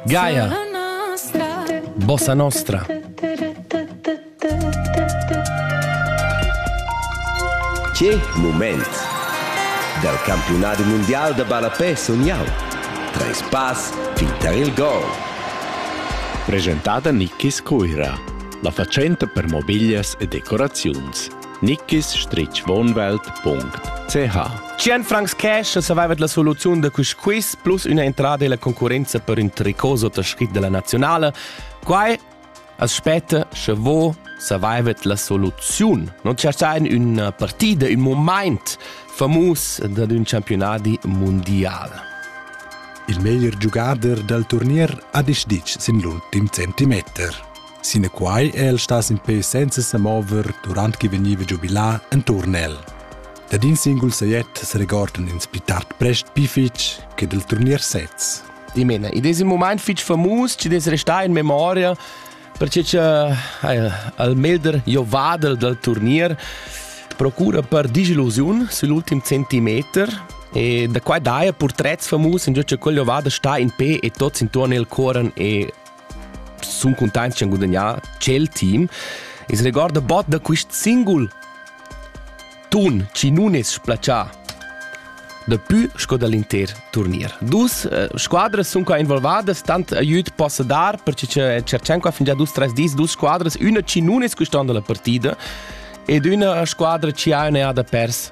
Gaia, bossa nostra. Che moment! Dal campionat mondial da ballapè sun jau. Treis pass fin tar il gol. Presentada Nicky Scuira, la fatschenta per mobiglias e decoraziuns. nickisstrichwohnwelt.ch Cien francs cash saveva la soluziun da quist quiz plus üna entrada illa concurrenza per ün tricot sottascrit dalla nazionale. Quai as spetta, sche vo saveva la soluziun. Non c'è in una partida, un moment famus da un campionati mondial. Il meglier giugader dal turnier ha decidit sin l'ultim centimeter. Sinaquai è el stas in pe senza sa mover durant che vegniva giubilà enturn el. Dad in singul sajet s'regordan ins pli tard prest pli fitg che dal turnier sez. Ich meine, in diesem Moment fitg famus, ci des restar in memoria, perché che eh, al meglder jo vadel dal turnier procura per disillusiun sull'ultim centimeter e da qua daia portrets famus in giuce quello vada sta in pe e tots intorno il coran e sun cuntaints ch'han gudagnà tschel team. Ins regorda bod da quist singul tun chi nun es splacià dapü sco da l'inter turnier. Dus eh, squadras sun qua involvadas, tant aiüt possa dar, perche che cerchan qua fingià dus tres dis dus squadras, üna chi nun es custond la partida ed üna squadra chi ha üna da pers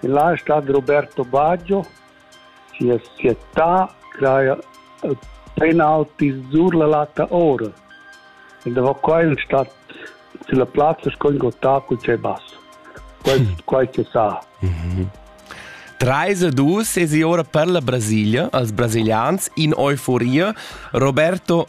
Il lai stat Roberto Baggio, sia cietà craja penaltis sur la latta ora ed avoca in stat silla plazza sco in gottà cul tschei bass. Quei, quei che sa. Mm-hmm. Treis e dus es ora per la Brasilia als brasilians in euforia. Roberto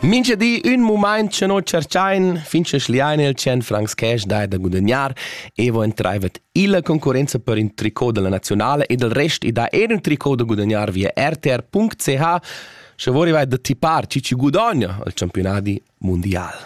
Mincha di ün mumaint cha no tscherchain fin cha schliain il tschen francs cash dai da gudagnar e vo entraivet illa concurrenza per ün tricot della nazionale ed il rest i dà eir ün tricot da gudagnar via rtr.ch scha vo rivair da tipar chi chi gudogna al championadi mundial.